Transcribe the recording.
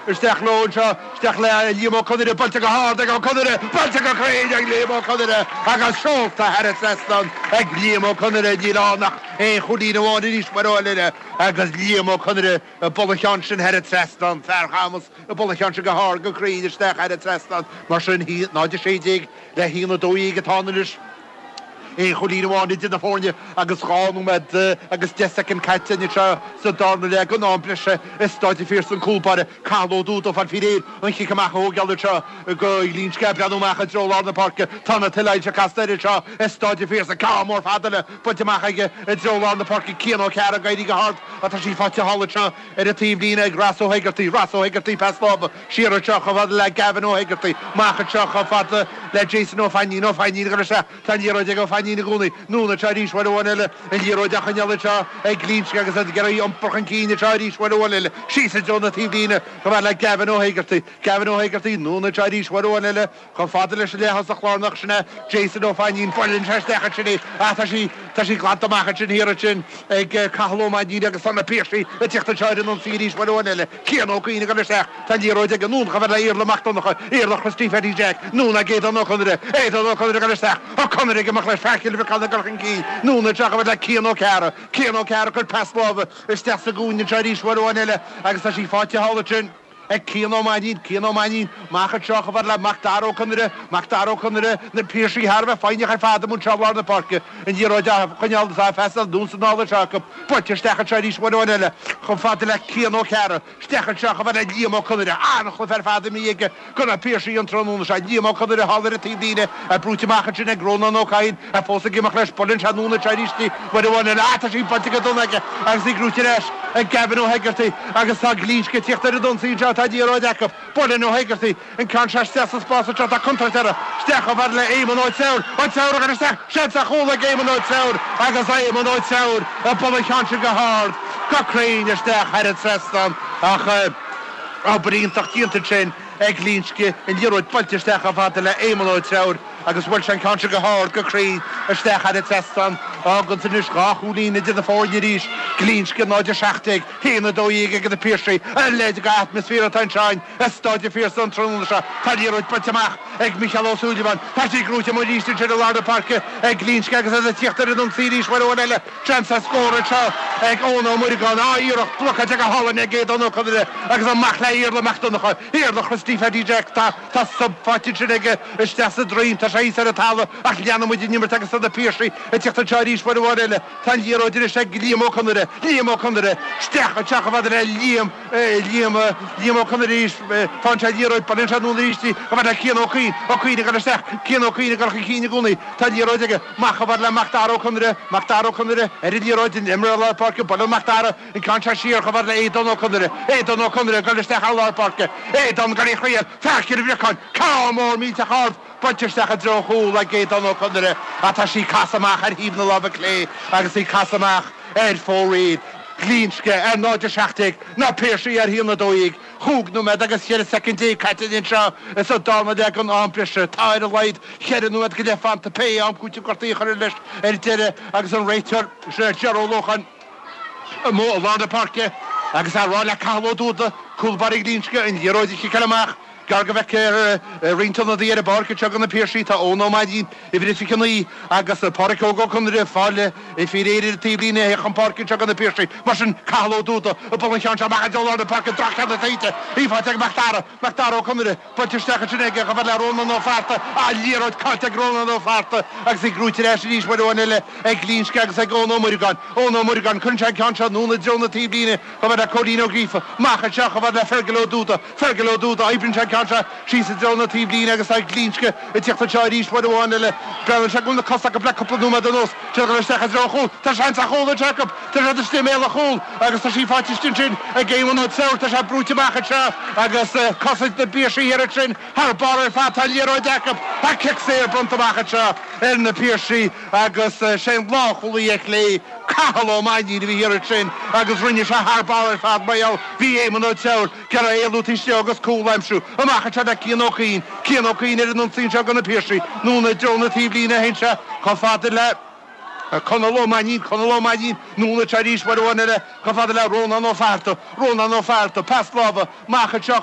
Isteach leo anseo, isteach le Liam Ó Conaire, buailte go hard ag Ó Conaire, buailte go cruinn ag Liam Ó Conaire agus seolta thar an trasnán ag Liam Ó Conaire. Níl ann ach aon chúilín amháin arís uair amháin eile agus Liam Ó Conaire ag bualadh an cheann sin thar an trasnán, Fear Chamuis ag bualadh an cheann sin go hard, go cruinn isteach thar an trasnán. Mar sin, 0-16 le 1-12 atá ann anois. Aon chúilín amháin idir na foirne agus dhá nóiméad agus deich soicind caite anois sa darna leath den am breise i Staid an Phiarsaigh, cúlbáire Cathal Ó Dubhda ag fáil faoi réir an cic amach a thógáil anseo do Ghlinsce ag breathnú amach i dtreo lár na páirce. Tá na tuilsoilse casta air anseo i Staid an Phiarsaigh, ceann mór fada eile buailte amach aige i dtreo lár na páirce, Cian Ó Cearra ag éirí go hard ach tá sí faighte thall anseo ar an taobhlíne ag Ross Ó hEigeartaigh. Ross Ó hEigeartaigh, pas láimhe. Siar anseo chomh fada le Gavin Ó hEigeartaigh, amach anseo chomh fada le Jason Ó Fainnín, Ó Fainnín ag dul isteach, tá an liathróid ag Ó Fainnín i gcónaí, anonn anseo arís, uair amháin eile, an liathróid á choinneáil anseo ag Glinsce agus iad ag iarraidh í a iompar chun cinn anseo arís, uair amháin eile, síos i dtreo na taobhlíne, chomh fada le Gavin Ó hEigeartaigh, Gavin Ó hEigeartaigh, anonn anseo arís, uair amháin eile, Chomh fada leis an leath-thosach lárnach, sin é Jason Ó Fainnín. Buaileann sé isteach ansin í, ach tá sí, tá sí glanta amach ansin thiar ansin ag Cathal Ó Mainnín agus tá na Piarsaigh ag tíocht anseo ar an ionsaí arís uair amháin eile. Cian Ó Cuinn ag dul isteach. Tá an liathróid aige, anonn chomh fada le Iarla Mac Donnacha, Iarla Christy Phaddy Jack, anonn ag Aodán Ó Conaire. Aodán Ó Conaire ag dul isteach. Ó Conaire ag imeacht leis fear Chill Bhriocáin ag dul chun cinn. Anonn anseo chomh fada le Cian Ó Cearra. Cian Ó Cearra ag cur pas láimhe isteach sa gcúinne anseo arís uair amháin eile agus tá sí faighte thall ansin. Ag Cian Ó Mainín, Cian Ó Mainín, amach anseo chomh fada le Mac Dara Ó Conaire, Mac Dara Ó Conaire, Na Piarsaigh thar a bheith foighneach ar fad amuigh anseo i lár na páirce an liathróid á choinneáil is á phasáil anonn is anall anseo acu. Buailte isteach anseo arís uair amháin eile chomh fada le Cian Ó Cearra. Isteach anseo chomh fada le Liam Ó Conaire. An-chluiche ar fad a bhí aige do na Piarsaigh an tráthnóna seo. Liam Ó Conaire thall ar an taobhlíne, é brúite amach ansin ag Rónán Ó Cadhain. Tá fós ag imeacht leis, buaileann sé anonn ansin arís í uair amháin eile, ach tá sí buailte go dona aige agus í gnóite ar ais ag Gavin Ó hEigeartaigh agus tá Glinsce ag tíocht ar an ionsaí anseo, tá an liathróid acu, buaileann Ó hEigeartaigh an ceann seo isteach sa spás anseo, tá contúirt orthu, isteach chomh fada le Éamonn Ó Treabhair, Ó Treabhair ag dul isteach, seans ar chúl ag Éamonn Ó Treabhair agus Éamonn Ó Treabhair ag bualadh an cheann sin go hard, go cruinn isteach thar an trasnán ach obair iontach déanta ansin. ag Glinsce an liathróid buailte isteach chomh fada le Éamonn Ó Treabhair agus bhuail sé an ceann seo go hard, go cruinn, isteach thar an trasnán. Fhágann sin anois dhá chúilín idir na foirne arís, Glinsce 0 17, 1 12 ag na Piarsaigh. A leithéid de atmaisféar atá anseo i Staid an Phiarsaigh an tráthnóna seo. Tá an liathróid buailte amach ag Micheál Ó Súilleabháin. Tá sí gnóite amuigh arís ansin i lár na páirce ag Glinsce agus iad ag tíocht ar an ionsaí arís uair amháin eile. Seans ar scór anseo ag Eoin Ó Muireagáin, ah iarracht blocáilte go hálainn ag Aodán Ó Conaire agus amach le Iarla Mac Donnacha, Iarla Christy Pheaidí Jack, tá shove faighte ansin aige isteach sa droim, tá sé thíos ar an talamh ach leanann muid an imirt agus tá na Piarsaigh ag tíocht anseo arís uair amháin eile, tá an liathróid anois ag Liam Ó Conaire, Liam Ó Conaire, isteach anseo chomh fada le Liam, Liam, Liam Ó Conaire arís, faigheann sé an liathróid, buaileann sé anonn aríst í, chomh fada le Cian Ó Cuinn, Ó Cuinn ag goil isteach, Cian Ó Cuinn ag goil chun cinn i gcónaí, tá an liathróid aige. Amach chomh fada le Mac Dara Ó Conaire, Mac Dara Ó Conaire, ar an liathróid an imreoir lár páirce buaileann Mac Dara an ceann seo siar chomh fada le Aodán Ó Conaire, Aodán Ó Conaire, ag goil isteach thar lár páirce, Aodán gan aon choinne, faic ar an bhriocáin, ceann mór millteach ard buailte isteach i dtreo an chúil ag Aodán Ó Conaire ach tá sí ag casadh amach ar thaobh na láimhe clé agus í ag casadh amach ar fóraoil Glinsce ar 0-17 Na Piarsaigh ar 1-12 Chúig nóiméad agus ceithre soicind déag caite anseo sa darna leath den am breise. Tá ar a laghad cheithre nóiméad go leith fanta pé am cúitimh gortaithe a chuirfear leis ar deireadh agus an réiteoir, Ger Ó Lócháin, amuigh i lár na páirce. Agus é ag rá le Cathal Ó Dúda, cúl báire Ghlinsce, an liathróid a chiceáil amach, Gearr go bhfeicfear roinnt ionadaí ar an bpáirc anseo go na Piarsaigh tá Eoin Ó Mainnín, uimhir a 29, agus Páraic Óg Ó Conaire, fáil réidh. Is faoi réir ar an taobhlíne a theacht chun páirce anseo do na Piarsaigh, mar sin Cathal Ó Dúda ag bualadh an cheann seo amach i dtreo lár na páirce droch-cheann, tá sí faighte ag Macdara, Macdara Ó Conaire, buailte isteach ansin aige chomh fada le Rónán Ó Fátharta, ah liathróid caillte ag Rónán Ó Fátharta agus í gnóthaithe ar ais arís uair amháin eile ag Glinsce agus ag Eoin Ó Muireagáin, Eoin Ó Muireagáin, cuireann sé an ceann seo anonn i dtreo na taobhlíne chomh fada le Cóilín Ó Gríofa, amach anseo chomh fada le Fergal Ó Dúda, Fergal Ó Dúda, Oibríonn sé an ceann seo síos i dtreo na taobhlíne agus tá Glinsce ag tíocht anseo arís uair amháin eile. Breathnaíonn sé go bhfuil na cosa acu le cúpla nóiméad anuas. Téann sé isteach i dtreo an chúil. Tá seans ar chúl anseo acu. Tá sé istigh i mbéal an chúil agus tá sí faighte istigh ansin ag Éamonn Ó Treabhair. Tá sé brúite amach anseo agus cosaint na bPiarsaigh thiar ansin thar barr ar fad. Tá an liathróid acu. Tá cic saor bronnta amach anseo ar na Piarsaigh. Agus sé an lánchúlaí ar clé, Cathal Ó Mainnín, a bhí thiar ansin agus rinne sé thar barr ar fad mar gheall bhí Éamonn Ó Treabhair ag iarraidh éalú taobh istigh dhó agus cúl a aimsiú amach anseo le Cian Ó Cuinn. Cian Ó Cuinn ar an ionsaí anseo go Na Piarsaigh, anonn i dtreo na taobhlíne a théann sé, chomh fada le Conall Ó Mainnín. Conall Ó Mainnín, anonn anseo arís uair amháin eile, chomh fada le Rónán Ó Fátharta. Rónán Ó Fátharta, pas láimhe amach anseo.